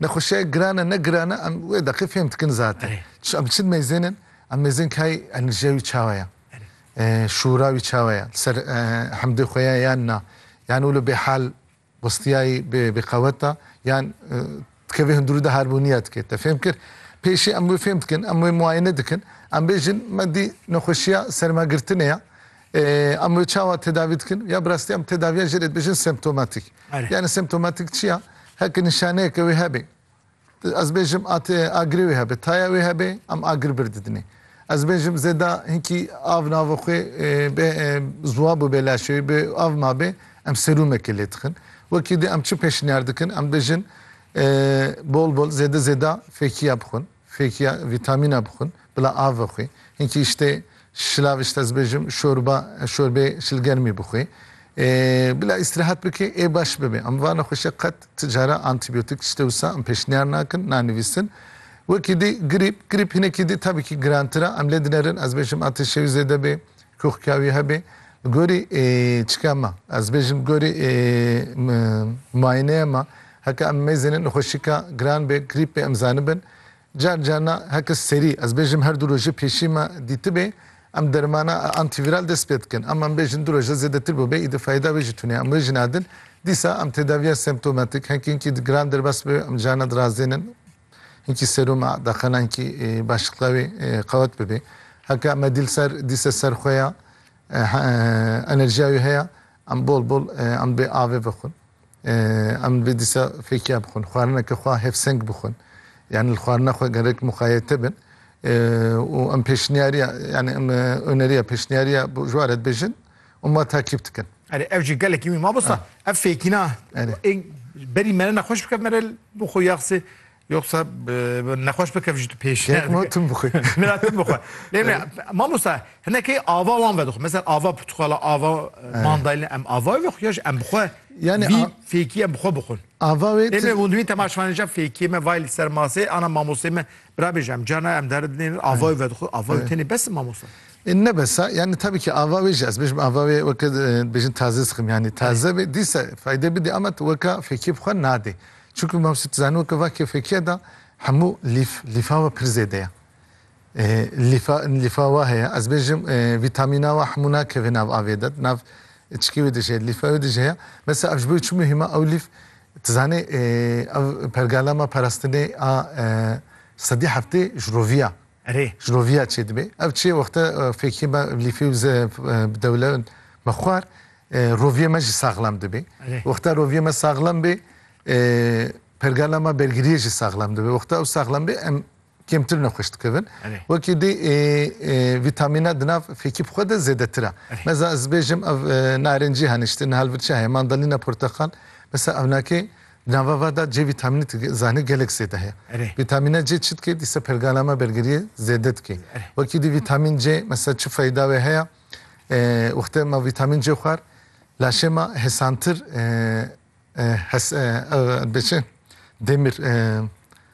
Nexweşe girane ne girane em wê deqê fêm dikin zate. Çi em çi mêzên in? Em mêzên kayê enerjiya wî çawa ye? Şûra wî çawa ye? Li ser hemdê xwe ye yan na? Yan wilo bêhal westiyayî bêqewet e yan dikevê hundirû de harbûniya dike. Te fêm kir? Pêşî em wê fêm dikin, em wê muayene dikin. Em bêjin me dî nexweşiya sermagirtinê ye. Em wê çawa tedavî dikin? Ya bi rastî em tedaviya jê re dibêjin semptomatîk. Yanî semptomatîk çi ya? Heke nîşaneyeke wê hebe. Ez bêjim atê agirê wê hebe, taya wê hebe em agir bir didinê. Ez bêjim zêda hinkî av nava xwe bê ziwa bûbe laşê wê, bê av mabe em serûmeke lê dixin. Wekî di em çi pêşniyar dikin? Em dibêjin bol bol zêde zêda fêkiya bixwin. Fêkiya vîtamîna bixwin, bila av vexwî. Hinkî îştê şilav îşte ez bêjim şorba, şorbeyê şilgermî bixwî. Bila îstîrehat bikî ê baş bibê. Em va nexweşîya qet ti cara antîbîyotik îşte wisa em pêşniyar nakin, nanivîsin. Wekî dî grîp, grîp hinekî dî tabîkî girantir a. Em lê dinerin ez bêjim atêşê wî zêde bê, koxkiya wî hebê. Bi gorî çika me, ez bêjim bi gorî muayeneya me, Heke em mêzên nexweşîka giran bê grîpê em zanibin, car car na heke serî, ez bêjim her du rojê pêşî me dîtibê, em dermana antîvîral dest pê dikin. Em em bêjin du roj de zêdetir bûbê, îdi feyda wê jî tune ye. Em wê jî nadin. Dîsa em tedaviya semptomatik, hinkî hinkî giran derbas bibe, em carna dirazênin hinkî seruma daxena hinkî başiqliya wê qewet bibe. Heke em me dîlser dîse ser xwe ya, enerjiya wê heye, em bol bol em dibê avê vexwin. Em vê dîsa fêkiya bixwin, xwarineke xwe hevseng bixwin. Yanî li xwarina xwe gerek muqayete bin û em pêşniyariya yanî em oneriya pêşniyariya ji we re dibêjin û me takîb dikin. Erê ev jî gelekî wî mamosta. Ev fêkîna ê berî mere nexweş bike mere bo xwe ya qisê. Yoksa nexweş bikev ji tu pêş. Lêkma tim bixwe. Mira tim bixwe. Lê me mamosta hinekê ava wan vedixwe. Mesela ava portuxala ava mandalina em ava ve xwe ya ji em bixwe. Yani vî fêkî em bixwe bixwin. Ava wê Lê me windwî temaşvanêja fêkî me vay li ser masê ana mamostê me birabê ji em cana em dere dinêrin ava wê vedixwe ava wê tenê bes mamosta. Ne besa yani tabii ki ava wê jî ez bêjim ava wê weke bêjin taze sıxim yani taze bê dîsa fayde bidê ama tu weka fêkî bixwe nadê. Çunku mam şî tu zanî weke va kêfekiya de hemû lîf, lîfa we pir zêde ye. Lîfa, lîfa wa heye, ez bêjim vîtamîna wa hemû nakeve nav avê de, nav çikê wê de jî heye, lîfa wê de jî heye. Mesela ev ji bo çi muhîm e, ew lîf, tu zanî ev pergala me parastinê a sedî heftê ji rovî ya, Erê. Ji roviya çê dibe. Ev çê wexta fêkê me lîfê û ze bi dewle me xwar. Roviyê me jî saxlam dibe. Wexta roviyê me saxlam bê pergala me bergiriyê jî saxlam dibe. Wexta ew saxlam bê em kêmtir nexweş dikevin. Wekî dê vîtamîna di nav fêkî bi xwe de zêdetir a. Meza ez bêjim ev narincî hene îşte niha li vir çi heye? Mandalîna, porteqal. Mesela evna kê Di nava van de cê vîtamînê tu zanî gelek zêde heye. Vîtamîna C çi dike? Dîsa pergala me bergeriyê zêde dike. Wekî dî vîtamîn C mesela çi feyda wê heye? Wextê ma vîtamîn C xwar laşê ma hesantir hes hes dibê çi? Demir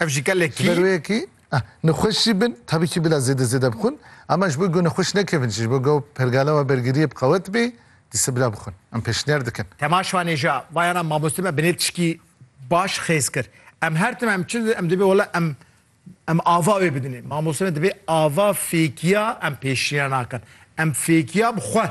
Ev jî gelekî. Ji ber wê yekî nexweş jî bin tabî kî bila zêde zêde bixwin ama ji bo ku nexweş nekevin jî ji bo ku pergala we bergiriyê bi qewet bê dîsa bila bixwin. Em pêşniyar dikin. Tema şanê jî ya vayana mamoste me bi nê tişkî baş xêz kir. Em her tim em çi em dibê wela em em ava wê bidinê. Mamoste me dibê ava fêkiya em pêşniya nakin. Em fêkiya bi xwe.